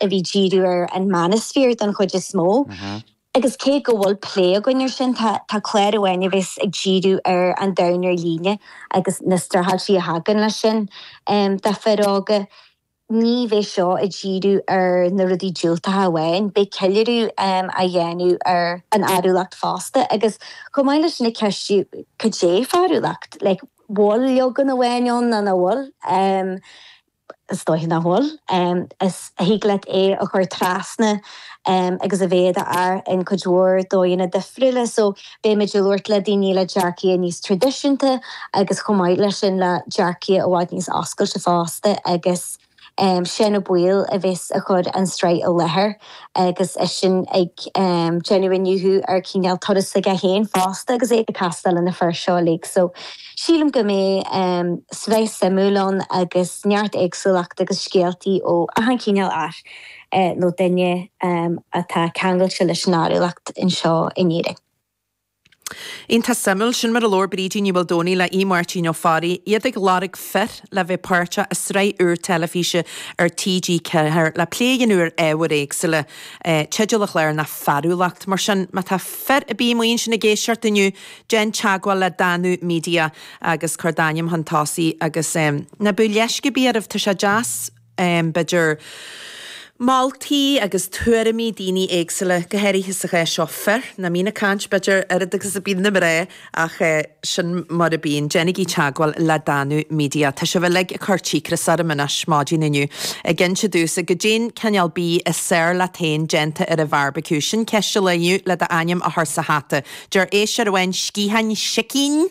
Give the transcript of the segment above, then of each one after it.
a bhí díriú ar an Manosphere don chuid is mó agus cé go bhfuil plé againn ar sin tá clár amháin a bhéas ag díriú ar an domhan ar líne agus na stráitéisí a thagann leis sin do fhir óga. Ní bheidh seo ag díriú ar na rudaí diúltacha amháin, beidh ceiliúradh á dhéanamh ar an fhearúlacht fosta agus chomh maith leis sin ag ceistiú cad é fearúlacht, like bhfuil leagan amháin ann nó nach bhfuil? Is dóiche nach bhfuil. Is thig leat é a chur trasna agus a bheith i d'fhear i gcuid mhór dóigheanna difriúla. So, beimid ag labhairt le daoine le dearcadh níos traidisiúnta agus chomh maith leis sin le dearcadh i bhfad níos oscailte fosta agus sin é Paul a bheas ag cur an tsraith i láthair. agus eisean ag déanamh iniúchadh ar chineál turas aige féin fosta agus é ag castáil le na fir seo uilig. So, sílim go mbeidh sraith shuimiúil ann agus neart éagsúlachta agus scéaltaí ó achan cineál fear nó duine atá ceangailte leis an fhearúlacht anseo in Éirinn. Iontach suimiúil. Sin mar a labhair Brídín Ní Mhaoldomhnaigh le hAodh Máirtín Ó Fearraigh, iad ag lorg fir le bheith páirteach i sraith úr teilifíse ar TG4 le plé a dhéanamh ar ábhair éagsúla. Teideal an chláir ná Fearúlacht, mar sin má tá fir ar bith amuigh ansin ag éisteacht inniu, déan teagmháil le Danú Media agus cuir d'ainm chun tosaigh agus ná bíodh leisce ar bith oraibh, tá sé deas. b'fhéidir, moltaí agus tuairimí daoine éagsúla, go háirithe sa chás seo fir, nach mbíonn ag caint, b'fhéidir, oiread agus a bíonn na mná, ach sin mar a bíonn. Déanaigí teagmháil le Danú Media, tá sibh uilig ag cur cíocras orm anois, maidin inniu, ag inse domhsa goidé an cineál bídh is fearr leat féin déanta ar an bheárbaiciú, sin ceist an lae inniu, le do ainm a chur sa hata, deir éisteoir amháin, sciatháin sicín!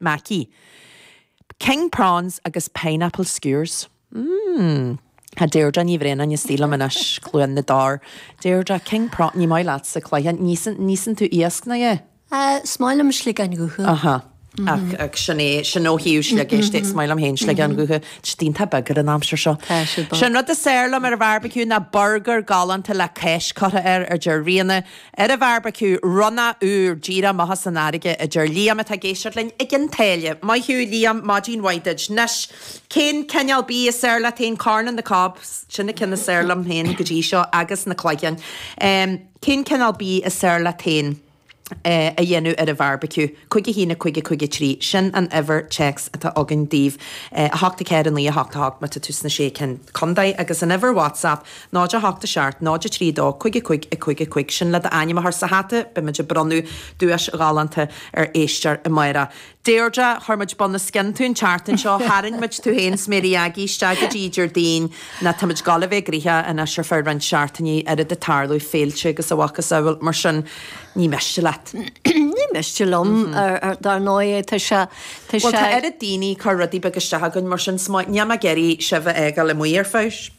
Maith thú. King prawns agus pineapple skewers. Mmm. A Deirdre Ní Bhraonáin sa stiúideo liom anois, Cluain na dTor. Deirdre, king prawn, ní maith leatsa cloicheáin, ní íosann tú iasc, nach ea? Is maith liom sliogáin dhubha. Aha. Ach, ach sin é, sin ó thaobh sliogéisc de, is maith liom féin sliogáin dhubha. Tá siad iontach beag ar an aimsir seo. Sin an rud is fearr liom ar an bharbecue ná burgar galánta le cáis leáite air, a deir Ríona. Ar an bheárbaiciú, ronnach úr díreach amach as an fharraige, a deir Liam, atá ag éisteacht linn i gCionn tSáile. Maith thú, Liam, maidin mhaith duit. Anois, cén cineál bídh is fearr leat féin? Corn on the cob, sin na cinn is fearr liom féin go dtí seo, agus na cloicheáin. Cén cineál bídh is fearr leat féin a dhéanamh ar an bheárbaiciú? Cúig a haon, a cúig, a cúig a trí, sin an uimhir téacs atá againn daoibh, a hocht a ceathair a naoi a hocht a hocht má tá tú sna sé contae, agus an uimhir WhatsApp 0 8 7 0 3 2 5 5 5 5 Sin le d'ainm a chur sa hata, beimid ag bronnadh duais ghalánta ar éisteoir amárach. Deirdre, chuir muid bunoscionn tú an tseachtain seo, tharraing muid tú féin 's Máirí Óg isteach go dtí Déardaoin nó táimid ag dul a bheith ag rith anois ar feadh roinnt seachtainí, oiread ag tarlú, féilte agus a mhacasamhail, mar sin ní miste leat. Ní miste liom, dar ndóigh, tá sé, tá sé. Bhuel, tá oiread daoine ag cur rudaí beaga isteach againn, mar sin, 's má, níl mé ag iarraidh sibh a fhágáil amuigh ar fad.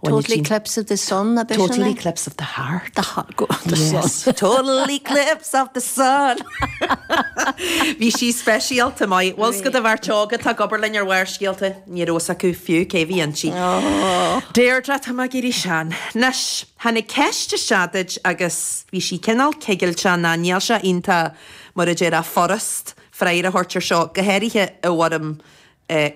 Total eclipse of the sun ab eisean é? Total eclipse of the heart. The heart, go on, the sun. Yes, total eclipse of the sun. Bhí sí speisialta maith. Bhuel, scuad Bharrscéalta óga atá ag obair linn ar Bharrscéalta. Ní raibh fhios acu fiú cé a bhí ann. Deirdre, tá mé ag éirí sean. Anois, tháinig ceist isteach duit agus bhí sí cineál cigilteach nó níl sé iontach, mar a deir a' furast freagra a thabhairt ar seo, go háirithe i bhfoirm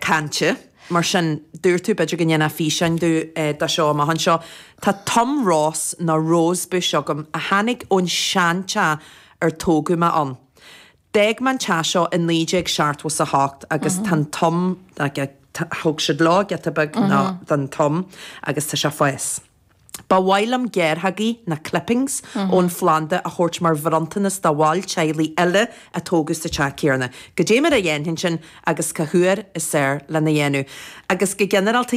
cainte. Mar sin, dúirt tú, b'fhéidir go ndéanfá físeán dó de seo amach anseo. Tá tom róis, nó rose bush, agam, a tháinig ón seanteach ar tógadh mé ann. D'fhág mé an teach seo i naoi déag seachtmhó is a hocht agus tá an tom, thug siad leo giota beag den tom agus tá sé ag fás. Ba mhaith liom gearrthógaí, nó clippings, ón phlanda a thabhairt mar bhronntanas do bhaill teaghlaigh eile a tógadh sa teach chéanna. Goidé mar a dhéanfainn sin agus cá huair is fhearr lena dhéanamh. Agus go ginearálta,